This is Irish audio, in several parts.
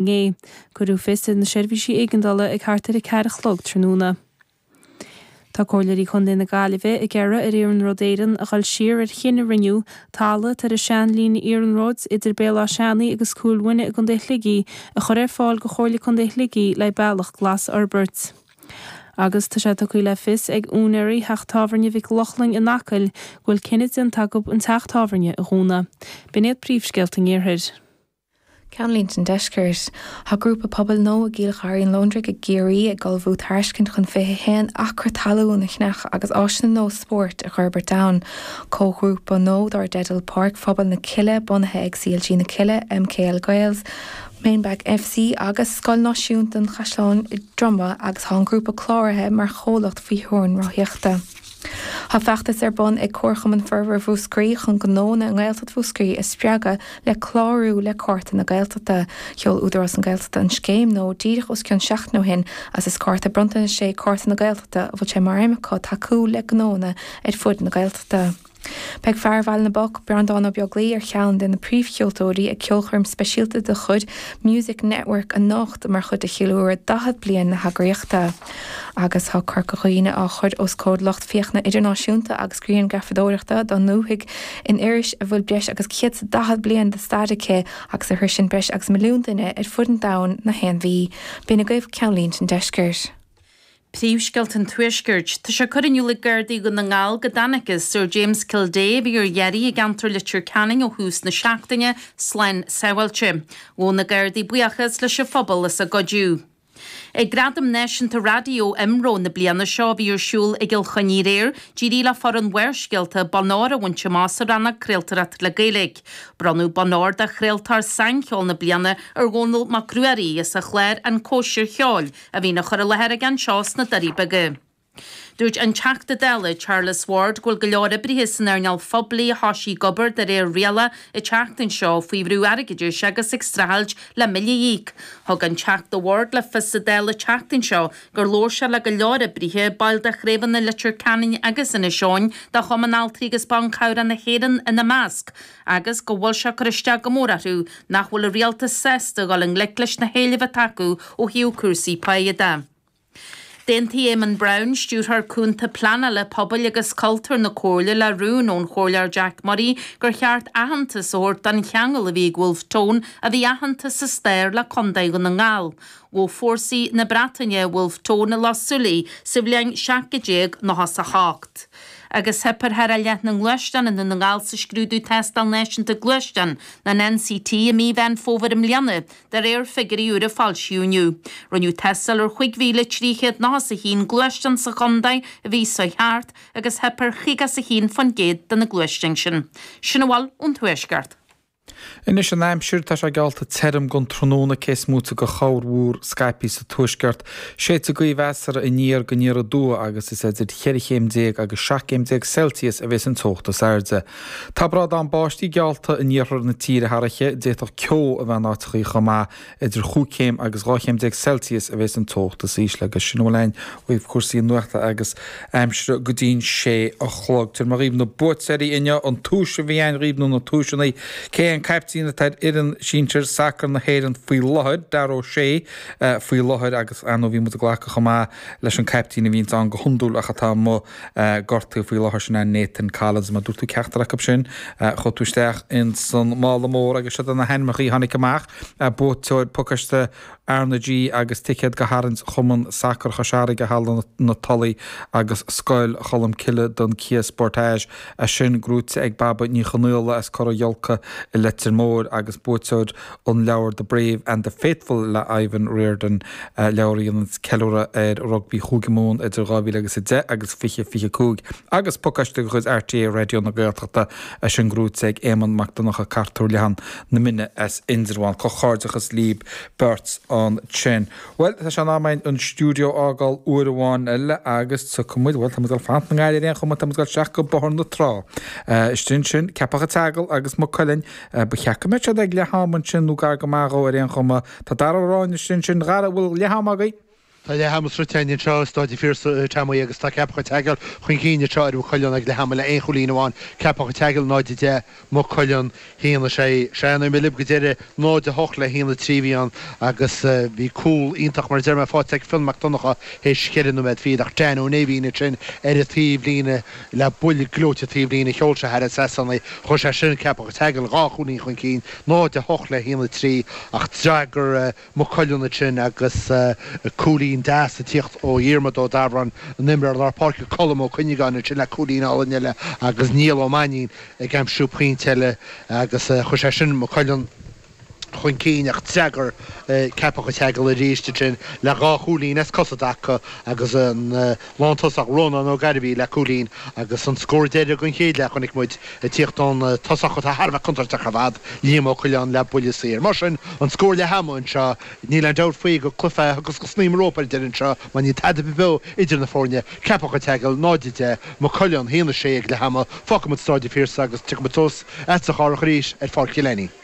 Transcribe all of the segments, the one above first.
inné. Cuireadh fios ar na seirbhísí éigeandála ag thart ar a ceathair a chlog tráthnóna. Tá Comhairleoirí Chontae na Gaillimhe ag iarraidh ar Iarnród Éireann a dhul siar ar chinneadh a rinne siad talamh atá ar an seanlíne iarnróid idir Béal Átha hAmhnais agus Cúil Mhuine i gContae Shligigh a chur ar fáil go Chomhairle Contae Shligigh le bealach glas a fhorbairt. Agus tá sé tugtha le fios ag úinéaraí theach tábhairne Mhic Lochlainn in Acaill go bhfuil cinneadh déanta acu an teach tábhairne a dhúnadh. B'in iad príomhscéalta an iarthair. Ceannlínte an Deiscirt. Tá grúpa pobail nó i gCill Gharraí an Londraigh i gCiarraí ag ullmhú tairiscint chun 21 acra talún a cheannach agus áiseanna nó spóirt a dh'fhorbairt ann. Comhghrúpa nó dar teideal Páirc Phobail na Cille bunaithe ag CLG na Cille, MKL Gaels, Mainback FC agus Scoil Náisiúnta an Chaisleáin an Droma agus tá an grúpa cláraithe mar chomhlacht faoi theorainn ráthaíochta. Tá feachtas ar bun ag Comharchumann Forbartha Mhúscraí chun gnónna i nGaeltacht Mhúscraí a spreagadh le clárú le Cárta na Gaeltachta. Sheol Údarás na Gaeltachta an scéim nó díreach os cionn seachtain ó shin agus is cárta bronntanais é Cárta na Gaeltachta a bhfuil sé mar aidhm acu tacú le gnónna ar fud na Gaeltachta. Beidh fear Bhaile na bPoc, Breandán Ó Beaglaoi, ar cheann de na príomhcheoltóirí ag ceolchoirm speisialta de chuid Music Network anocht mar chuid de cheiliúradh 40 bliain na heagraíochta. Agus tá Corca Dhuibhne á chur os comhair lucht féachana idirnáisiúnta agus grianghrafadóireacht don ndúthaigh in iris a bhfuil breis agus céad daichead bliain de stair aici agus a shroiseann breis agus milliún duine ar fud an domhain na haon mhí. B'in agaibh Ceannlínte an Deiscirt. Príomhscéalta an Tuaiscirt. Tá sé curtha in iúl ag Gardaí Dhún na nGall go dtángthas ar James Kildea, a bhí ar iarraidh i gceantar Leitir Ceanainn ó thús na seachtaine, slán sábháilte. Ghabh na Gardaí buíochas leis an phobal as a gcuidiú. Ag Gradaim Náisiúnta Raidió imro na bliana seo a bhí ar siúl i gCill Chainnigh aréir, d'éirigh le foireann Bharrscéalta bonn óir a bhaint amach sa rannóg 'Craoltóireacht le Gaeilge'. Bronnadh bonn óir do 'Chraoltóir Saincheoil na Bliana' ar Dhónall Mac Ruairí as a chlár 'An Cóisir Cheoil', a bhíonn á chur i láthair aige anseo sna Doirí Beaga. Dúirt an Teachta Dála Charles Ward go bhfuil go leor oibrithe san earnáil phoiblí a thoisigh ag obair de réir riala an tseachtain seo faoi bhrú airgeadais agus ag streachailt le billí a íoc. Thug an Teachta Ward le fios sa Dáil an tseachtain seo gur labhair sé le go leor oibrithe, baill de chraobhanna Leitir Ceanainn agus Inis Eoghain de Chumann Altraí agus Ban Cabhrach na hÉireann ina measc, agus go bhfuil sé ag cur isteach go mór orthu nach bhfuil an rialtas sásta a dhul i ngleic leis na héilimh atá acu ó thaobh cúrsaí páighe de. D'aontaigh Éamonn Brown, Stiúrthóir Cúnta Pleanála Pobail agus Cultúir na Comhairle le rún ón Chomhairleoir Jack Murray gur cheart aitheantas a thabhairt don cheangal a bhí ag Wolfe Tone a bhí aitheanta sa stair le Contae Dhún na nGall. Ghabh fórsaí na Breataine Wolfe Tone i Loch Súilí sa bhliain 1798, agus theip ar thar leath na nGluaisteán i nDún na nGall sa scrúdú Tástáil Náisiúnta Gluaisteán an NCT i mí Mheán Fómhair i mbliana De réir figiúirí úra a foilsíodh inniu, rinneadh tástáil ar chúig mhíle trí chéad nócha is a haon gluaisteán sa chontae a bhí sa cheantar agus theip ar chúig pointe a haon fán gcéad de na gluaisteáin sin. Sin a bhfuil ón Tuaisceart. Anois an aimsir, tá sé geallta tirim don tráthnóna cé is móite de chorrmhúr scaipthe sa tuaisceart. Séidfidh gaoth mheasartha aniar go aniar aduaidh agus is idir cheithre chéim déag agus seacht gcéim déag Celsius a bhéas an teocht is airde. Tá brádán báistí geallta in iarthar na tíre thar oíche, d'fhéadfadh ceo a bheith in áiteachaí chomh maith. Idir chúig chéim agus dhá chéim déag Celsius a bhéas an teocht is ísle agus sin a bhfuil againn ó thaobh cúrsaí nuachta agus aimsire go dtí'n sé a chlog. Tabharfaidh mé dhaoibh na buaiteoirí inniu, an tomhas a bhí againn dhaoibh nó na tomhaiseannaí. Cé an caiptín atá ar fhoireann sinsir sacair na hÉireann faoi láthair? Dara O'Shea faoi láthair agus, ar ndóigh, bhí muid ag glacadh chomh maith leis an caiptín a bhíonns ann go hiondúil ach atá amuigh, gortaithe faoi láthair sin é Nathan Collins, má dúirt tú ceachtar acu sin, chuaigh tú isteach ins an mála mór agus seo iad na hainmneacha a tháinig amach, buaiteoir pacáiste RnaG agus ticéad do chrannchur, Chumann Sacair Chois Fharraige, Halla na Tulaí agus Scoil Cholm Cille don Kia Sportage, tá sin gnóite ag Baba Ní Chonaola as Cora Ghiolcaí i Leitir Móir agus buaiteoir An leabhar The Brave and the Faithful le Ivan O'Riordan, leabhar a dhéanann ceiliúradh ar rugbaí Chúige Mumhan idir 2000 agus 10 agus 20 25, agus pacáiste de chuid RTÉ Raidió na Gaeltachta, tá sin gnóite ag Éamonn Mac Donnacha Cartúr Leathan na Mine as Indreabhán. Comhghairdeachas libh beirt ansin. Bhuel, tá sé in am againn an stiúideo a fhágáil uair amháin eile agus tiocfaimid, bhuel, táimid dul fanacht i nGaillimh ar aon chuma, táimid dul isteach go Bóthar na Trá. Istigh ansin, Ceapach an tSeagail agus Maigh Cuilinn Ba cheart go mbeadh siad ag leath ama ansin nó gar go maith dhó ar aon chuma. Tá Dara anois ansin, Dara, an bhfuil leath ama againn? Tá leath ama sroichte againn anseo i Stáid an Phiarsaigh, Teamuí, agus tá Ceapach an tSeagail chun cinn anseo ar Mhaigh Cuilinn ag leath ama le aon chúilín amháin. Ceapach an tSeagail 0, 10, Maigh Cuilinn, Haon, 6. Ó labhair muid libh go deireadh, 0, 8 le haon, 3 a bhí ann agus bhí cúl iontach mar a deir mé faighte ag Fionn Mac Donnacha théis cheithre nóiméad fichead ach Dean Ó Néibhín ansin ar an taobh líne Le buille gleoite taobhlíne a sheol sé thar an trasnán, chuir sé sin Ceapach an tSeagail dhá chúilín chun cinn, 0-8 le 1-3, ach d'fhreagair Maigh Cuilinn ansin agus cúilín deas ag tíocht ó Dhiarmaid Ó Dabhráin an imreoir lár páirce, Colm Ó Cuinneagáin ansin le cúilín álainn eile agus Niall Ó Mainín ag aimsiú pointe eile agus chuir sé sin Maigh Cuilinn chun cinn ach d'fhreagair Ceapach an tSeagail arís ansin le dhá chúilín as cosa Dacko agus an lántosach Rónán Ó Gairbhí le cúilín agus an scór deiridh den chéad leath chonaic muid ag tíocht ón tosach atá thar a bheith contúirteach ar fad, Liam Ó Coileáin le buille saor. Mar sin, an scór leath ama anseo, níl aon dabht faoi gur cluiche é a ghabhfas go snaidhm rópa ar deireadh anseo mar níl tada beo idir na foirne, Ceapach an tSeagail, 0-10, Maigh Cuilinn haon a sé ag leath ama, fágfaimid Staid an Phiarsaigh agus tiocfaimid suas ag Cárthach arís ar Pháirc Chill Ainín.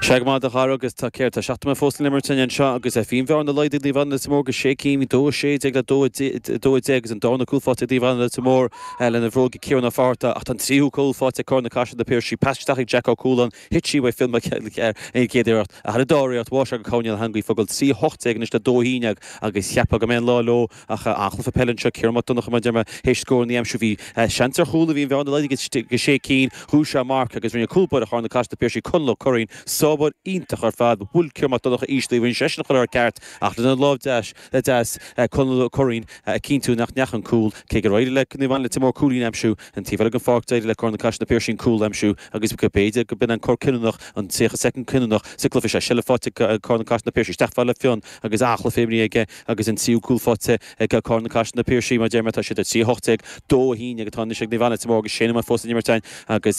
Sea, go maith, a chara, agus tá céard tá seacht nóiméad fós le n-imirt ann anseo, agus bhí an bhearna laghdaithe ag Naomh Anna Leitir Móir go sé cinn, dó a sé déag le dó a dó a deich, agus an dara cúl fáighte ag Naomh Anna Leitir Móir lena bhróig ag Ciarán Ó Fátharta, ach tá an tríú cúl fáighte ag Carna Caiseal na Piarsaigh, pas isteach ag Jack Ó Cualáin, thit sí uaidh Phil Mac Ceairtlaigh ar an gcéad iarracht, ach ar an dara iarracht bháigh sé í i gcúinne na heangaí, ag fágáil trí a hocht déag anois le dó a haon déag, agus cheapfá go mbeidh an lá leo. Ach an-chluiche peile anseo, Ciarán Mac Donncha, a Dhiarmaid, théis scór a aimsiú bhí seans ar chúl a bhí an bhearna laghdaithe go dtí 6 cinn, ghnóthaigh sé marc agus rinne cúl báire Charna Caiseal na Piarsaigh, Conal Ó Curraoin, sábháil iontach ar fad, bhuail Ciarán Mac Donncha íseal í, rinne seisean chuile rud ceart ach lena lámh dheas deas Conal Ó Curraoin ag cinntiú nach ndeach an cúl. Cé gur éirigh le Naomh Anna Leitir Móir cúilín a aimsiú an taobh eile den pháirc d'éirigh le Carna Caiseal na Piarsaigh an cúl a aimsiú agus b'fhéidir go b'in an cor cinniúnach, an 30 soicind cinniúnach sa cluiche seo. Seilbh faighte ag Carna Caiseal na Piarsaigh, isteach fada le Fionn agus an-chluiche imrithe aige, Agus an tríú cúl faighte ag Carna Caiseal na Piarsaigh, mar a deir mé, tá siad ar 3, 18, 2, 11 atá anois ag Naomh Anna, Leitir Móir agus sé nóiméad fós le n-imirt ann agus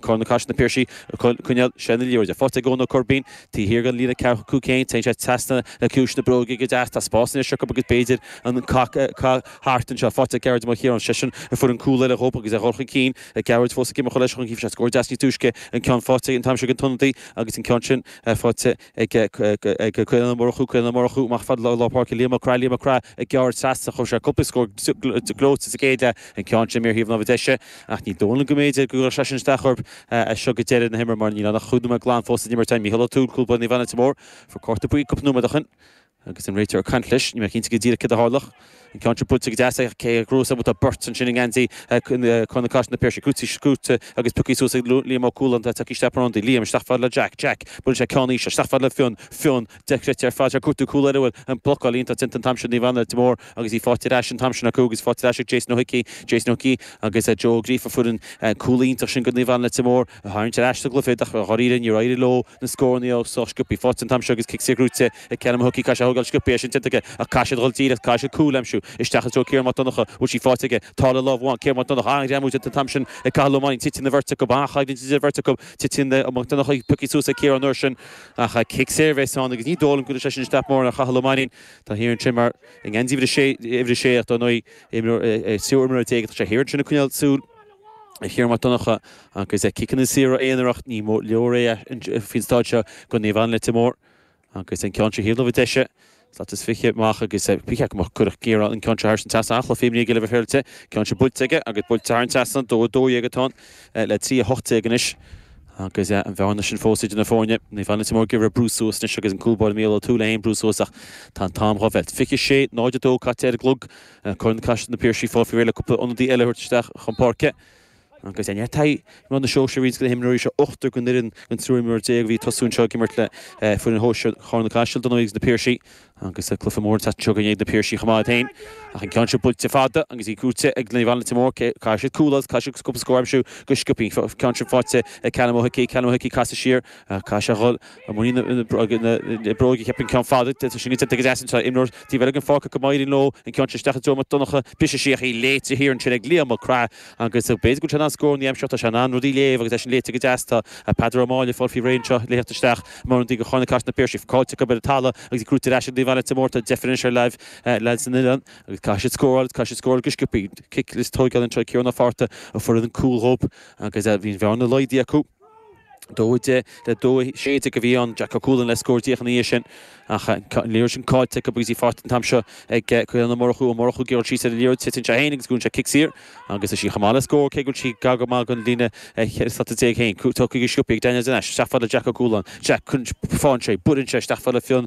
Carna Caiseal na Piarsaigh ag coinneáil seilbh na liathróide. Faighte ag Eoin Ó Coirbín, taobh thiar den líne ceathracha cúig féin, téann sé trasna le ciumhais na bróige go deas. Tá spás anois acu agus b'fhéidir an cath thart anseo. Faighte ag Gearóid Mac Chiaráin, seisean a fuair an cúl eile dhóibh agus é dhul chun cinn. Ag Gearóid fós ag imirt chomh leiseach, d'aimsigh sé scór deas níos túisce? An ceann faighte an t-am seo ag an t-ionadaí agus an ceann sin faighte ag Caolan Ó Murchú Caolan Ó Murchú, amach fad lár páirce Liam Mac Craith Liam Mac Craith, ag gearradh trasna, chuir sé cúpla scór gleoite sa gcéad leath, an ceann sin amú ar thaobh na láimhe deise, ach ní dóigh liom go mb'fhéidir go gcuirfeadh sé sin isteach orthu as seo go deireadh na himeartha mar níl ann ach cúig nóiméad glan fós le n-imirt. Mícheál O'Toole, cúl báire Naomh Anna Leitir Móir, fuair cárta buí cúpla nóiméad ó shin. Agus an réiteoir ag caint leis, níl mé cinnte go díreach céard a tharla ach an ceann seo buailte go deas, ach cé a gcruthaigh saibhreas do beirt ansin i ngeansaí Carna Caiseal na Piarsaigh, Cúití Scút, agus pioctha suas ag Liam Ó Cualáin atá ag teacht isteach mar ionadaí, Liam, isteach fad le Jack, Jack, buaileann sé ceann íseal, isteach fad le Fionn, Fionn, dochreidte ar fad, é ag cuartú cúl eile a bhfuil an blocáil iontach déanta an t-am seo, Naomh Anna Leitir Móir, agus í fáighte ar ais an t-am sin acu, agus í fáighte ar ais ag Jason Ó hIcí, Jason Ó hIcí, agus Joe Ó Gríofa, fuair an cúl iontach sin go Naomh Anna Leitir Móir a tharraingt ar ais sa gcluiche, ach i dháiríre níor éirigh leo na scóranna a fháil sciobtha, í fáighte an t-am seo agus cic saor gnóite Ag ceann mo shocaí caithfidh sé í a thógáil sciobtha, é sin déanta aige ach caithfidh siad a dhul díreach, caithfidh siad cúl a aimsiú, isteach i dtreo Ciarán Mac Donncha, bhfuil sí faighte aige, tá le lámh amháin, Ciarán Mac Donncha, an-ghreamú déanta an t-am sin ag Cathal Ó Mainnín, titeann an bheirt acu, ba an-choimhlint idir an bheirt acu, titeann Mac Donncha, pioctha suas ag Ciarán an uair sin, ach cic saor a bheas ann agus ní dóigh liom go gcuirfidh sé sin isteach mórán ar Chathal Ó Mainnín, tá thiar ansin mar, i ngeansaí uimhir a sé, uimhir a sé ach dar ndóigh imreoir, triúr imreoirí déag, tá sé thiar ansin ag coinneáil súil ar Chiarán Mac Donncha agus ciceanna saora aonarach, ní leor é faoin stáid seo, do Naomh Anna Leitir Móir. Agus an ceann seo thaobh na láimhe deise, slat is fiche amach agus fiche acu amach. Cuirfidh Ciarán an ceann seo thar an trasnán. Fírinne aige libh, a Shéarlte. Ceann seo buailte aige agus buailte thar an trasnán. Dó a dó dhéag atá ann le trí a hocht déag anois. Agus an bhearna sin fós idir na foirne. Naomh Anna Leitir Móir ag iarraidh brú suas anois agus an cúl báire Mícheál Ó Tuathail é féin ag brú suas ach tá an t-am dhá mheilt. Fiche sé nóiméad caite ar an gclog. Carna Caiseal na Piarsaigh ag fáil faoi réir le cúpla ionadaí eile a thabhairt isteach chun páirce. Agus neart taithí i ngrád na Sóisear ag roinnt de na himreoirí seo, ochtar den fhoireann den triúr imreoir déag a bhí ag tosú anseo ag imirt le foireann shóisir Charna Caiseal, dar ndóigh agus Na Piarsaigh. Agus cluiche mór an tseachtain seo chugainn ag Na Piarsaigh chomh maith iad féin, ach an ceann seo buailte fada agus í buaite ag Naomh Anna Leitir Móir. Caithfidh siad cúl agus caithfidh siad cúpla scór a aimsiú go sciobtha. An ceann sin faighte ag Callum Ó hIcí. Callum Ó hIcí casadh siar, caithfidh sé a dhul i muinín na bróige a chiapadh an ceann fada. Tá sé níos deas anseo. Imreoir taobh eile den pháirc acu, má éiríonn leo. An ceann sin isteach ag Diarmuid Mac Donncha. Briseadh síos í léite thiar ansin ag Liam Mac Craith. Agus b'fhéidir go bhfuil sé in ann scóranna a aimsiú, tá sé in ann rudaí a léamh agus é sin léite go deas. Tá Peadar Ó Máille ag fáil faoi réir anseo, le theacht isteach mar ionadaí ag Carna Caiseal Na Piarsaigh, caillte acu ar an talamh agus í gnóite ar ais ag Naomh Anna Leitir Móir. Tá deifir anois ar leaids na n-oileán agus caithfidh siad scóráil agus caithfidh siad scóráil go sciobthaí. Cic le tóigeáil anseo ag Ciarán Ó Fátharta a fuair an cúl dóibh agus bhí an bhearna laghdaithe acu. Dó deich le dó sé déag a bhí ann, Jack Ó Cualáin le scór díreach ina dhiaidh sin. Ach an liathróid sin caillte acu agus í faighte an t-am seo ag Caolán Ó Murchú. Ó Murchú ag goil síos ar an liathróid, titeann sé féin agus gnóthaíonn sé cic saor agus tá sí chomh maith le scór, cé go bhfuil sí gar go maith don líne 14 slata féin. Tóigthe go sciobthaí ag Daniel de Nais isteach fad le Jack Ó Cualáin. Jack, faigheann sé, buaileann sé isteach fad le Fionn.